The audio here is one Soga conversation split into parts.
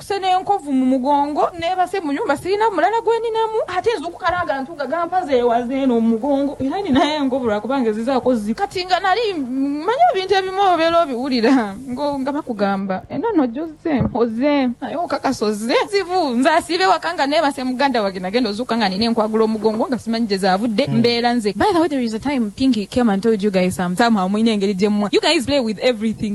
Kuse n'enkovu mu mugongo neebase mu nyumba sirina mulala gwe ninamu ate nzuukuka n'agantu nga gampaza ewa zeena omu mugongo era ninagho enkovu lwa kubanga ezizaaku zi kati nga nali mmanyi ebintu ebimu obeera obiwulira ngo nga bakugamba enono ojozze oze aye okakasa ozze zivu nze asiiba ewaka nga neebase muganda wange nagenda ozuukuka nga nina enkwagula omugongo nga simanyi gye zaavudde mbeera nze by the way there is a time Pinky came and told you guys some somehow mulina engeri gye mwa you guys play with everything.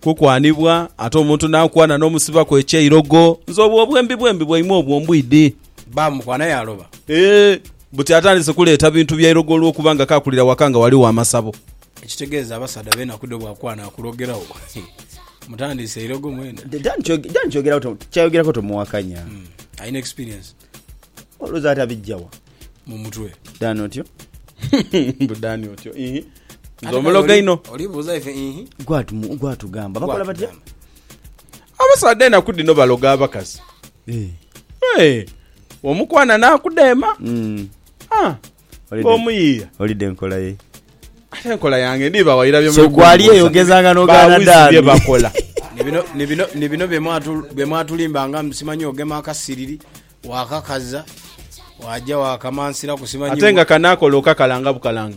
Kukwanibwa, ate omuntu n'akwana n'omusibaku eky'eirogo. Nze obwo obwembi bwembi bwaimwe obwo mbwidi. Baamukwana yaaloba. Ee, buti atandise kuleeta bintu bya irogo olw'okuba nga kaakulira waka nga ghaligho amasabo. Ekitegeeza abasaadha b'enaku dhino bw'akwana akulogeragho. Mutandiise irogo mwena. Dan ky'ayogerako tomuwakanya. Alina experience. Olowooza atabijja wa? mu mutwe Dani otyo. Mbu Dani otyo. Ihi. Nze omuloga inho. olibuuza ife ihi Gwatumu- Gwatugamba bakola batya? Abasaadha enaku dhino baloga abakazi. Eh. Eh, Omukwana n'akudeema. Mm. Ah, Ng'omuyiia. Olidde enkola ye. Ate enkola yange ndiiba wairabye mu So ggwe ali eyo bikunguusa. ogezanga n'ogaana Bawizi dha bye mi. bakola. Ni bino, ni bino, ni bino bye mwatu, bye mwatulimbanga mbu simanyi ogema akasiriri, waakakaza, waaja waakamansiraku simanyi Ate nga wa- kano akola okakalanga bukalanga.